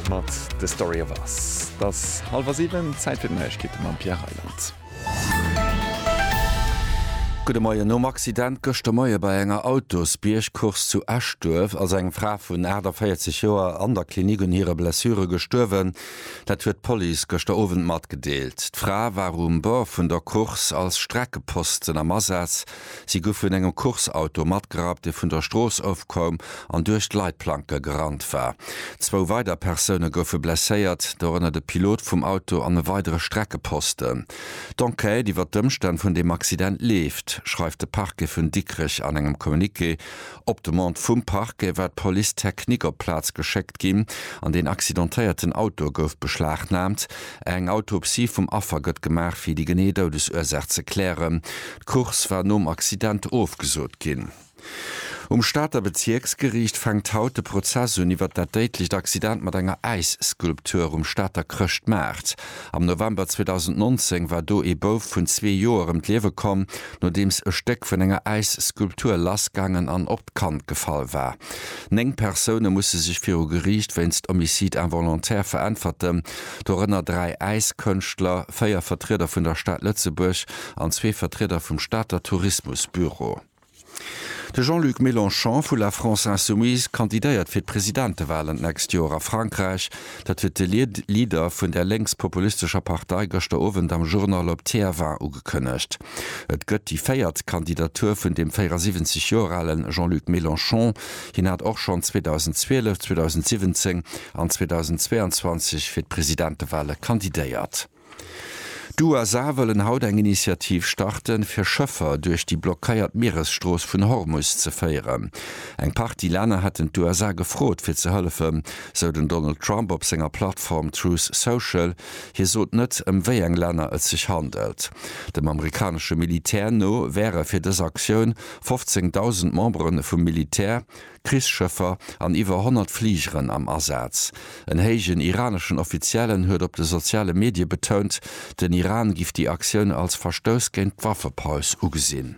Mat The Story of Us. Et ass hallwer 7, Zäit fir d'Neiegkeete mam Pierre Reyland. Gudde Moien. Nom Accident gëschter Moie bei enger Autosbiergcourse zu Eschduerf ass eng Fra vun 48 Joer an der Klinik un hire Blessure gestuerwen. Dat huet d'Police gëschter Owend matgedeelt. D'Fra war um Bord vun der Course als Streckeposten am Asaz. Si gu vun engem Course-Auto matgerappt, dee vun der Strooss ofkoum an duerch d'Leitplanke gerannt war. Zwou weider Persoune goufe blesséiert, dorënner de Pilot vum Auto an e weidere Streckeposten. D'Enquête iwwer d'Ëmstänn vun deem Accident leeft, schreift de Parquet vun Dikrech an engem Communiqué. Op Demande vum Parquet war d'Police technique op d'Plaz geschéckt ginn an deen accidentéierten Auto gouf beschlagnaamt. Eng Autopsie vum Affer gëtt gemaach, fir déi genee Doudesursaach ze klären. D'Course war nom Accident ofgesot ginn. Um Stater Bezierksgeriicht fänkt haut de Prozess un iwwert dat déidlecht Accident mat enger Äisskulptur um Stater Chrëschtmaart. Am November 2019 war do ee Bouf vun zwee Joer ëm d'Liewe komm, nodeems e Stéck vun enger Äisskulptur lassgaangen an op d'Kand gefall war. Néng Persoune musse sech viru Geriicht wéinst Homicide involontaire veräntwerten, dorënner dräi Äiskënschtler, véier Vertrieder vun der Stad Lëtzebuerg an zwee Vertrieder vum Stater Tourismusbüro. De Jean-Luc Mélenchon vu La France Insoumise kandidéiert fir d'Presidentewalen d'nächst Joer a Frankräich. Dat huet de Leader vun där lénks-populistescher Partei gëschter Owend am Journal op TF1 ugekënnegt. Et gëtt déi véiert Kandidatur vun dem 74 Joer ale Jean-Luc Mélenchon. Hien hat och schonn 2012, 2017 an 2022 fir d'Presidentewale kandidéiert. D'USA wëllen haut eng Initiativ starten, fir Schëffer duerch déi blockéiert Mieresstrooss vun Hormus ze féieren. Eng Partie Länner hätten d'USA gefrot, fir ze hëllefen, sou den Donald Trump op senger Plattform Truth Social. Hie sot net, ëm wéi eng Länner et sech handelt. Dem amerikanesche Militär no wäre fir dës Aktioun 15.000 Membere vum Militär, Krichsschëffer an iwwer 100 Fligeren am Asaz. En héijen iraneschen Offiziellen huet op de soziale Medie betount, den Iran giff déi Aktioun als Verstouss géint d'Waffepaus ugesinn.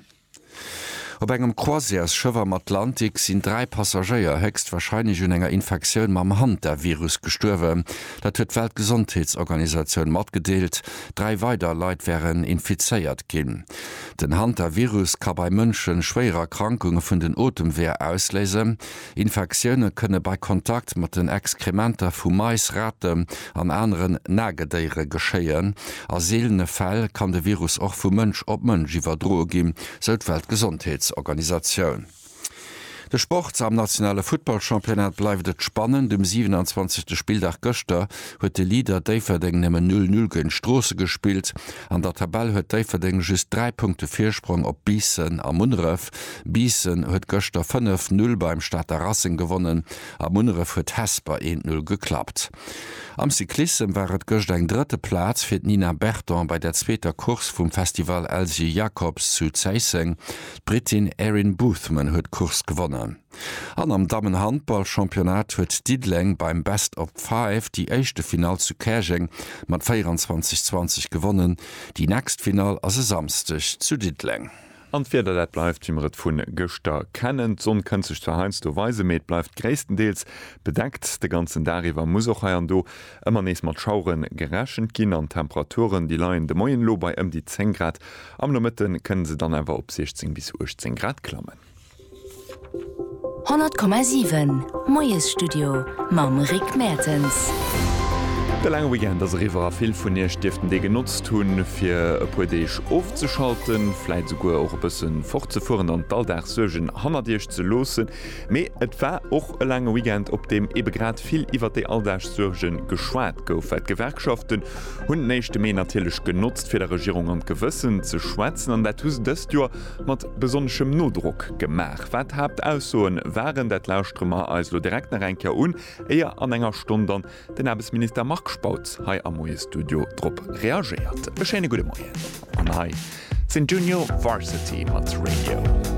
Op engem Croisièresschëff am Atlantik sinn dräi Passagéier héchstwarscheinlech un enger Infektioun mam Hantavirus gestuerwen. Dat huet d'Weltgesondheetsorganisatioun matgedeelt. Dräi weider Leit wären infizéiert ginn. Den Hantavirus ka bei Mënsche schwéier Erkrankunge vun den Otemweeër ausléisen. Infektioune kënne bei Kontakt mat den Exkrementer vu Mais, Raten an aneren Nagedéiere geschéien. A seelene Fäll kann de Virus och vu Mënsch op Mënsch iwwerdroe ginn, sou d'Weltgesondheetsorganisatioun. De Sport, Am nationale Futtballchampionnat bleift et spannend. Um 27. Spilldag gëschter huet de Leader Déifferdeng nëmmen 0, 0 géint Stroossen gespillt. An der Tabell huet Déifferdeng just 3 Punkte Virsprong op Biissen a Munneref. Eishockeyclub Biissen huet gëschter 5, 0 beim Stater Racing gewonnen a Munneref huet Hesper 1, 0 geklappt. Am Cyclissem war et gëscht eng drëtte Plaz fir d'Nina Berton bei der zweeter Course vum Festival Elsy Jacobs zu Zéisseng. D'Brittin Erin Boothman huet d'Course gewonnen. An am Dammenhandballchampionnat huet Diddeleng beim Best of Five déi éischte Finall zu Käerjeng mat 24, 20 gewonnen. Déi nächst Finall ass e Samsdeg zu Diddeleng. An d'Wieder, dat bleift wéi mer et vun gëschter kennen. D'Sonn kënnt sech zwar heiansdo weisen, mee et bleift gréisstendeels bedeckt. De ganzen Dag iwwer muss och hei an do ëmmer nees mat Schauere gerechent ginn an d'Temperaturen, déi leien de Moien elo bei ëm déi 10 Grad. Am Nomëtte kënne se dann awer op 16 bis 18 Grad klammen. 100,7 Moiesstudio mam Rick Mertens. De laange Weekend ass eriwwer a vill vun iech dierften dee genotzt hunn, fir e puer Deeg ofzeschalten, vläit esouguer och e bësse fortzefueren an d'Alldagssuergen hannert iech ze loossen. Mee et war och e laange Weekend, op deem ebe grad vill iwwert déi Alldagssuerge geschwat gouf, well d'Gewerkschaften hunn den éischte Mee natierlech genotzt, fir der Regierung an d'Gewëssen ze schwätzen. An dat hu se dëst Joer Mat besonneschem Nodrock gemaach. Wat d'Haaptaussoen waren, dat lauschtere mer eis elo direkt nach eng Kéier un, éier an enger Stonn dann den Aarbechtsminister Marc Spautz hei am Moie-Studio drop reagéiert. E schéine gudde Moien an hei sinn Junior Varsity mat Radio.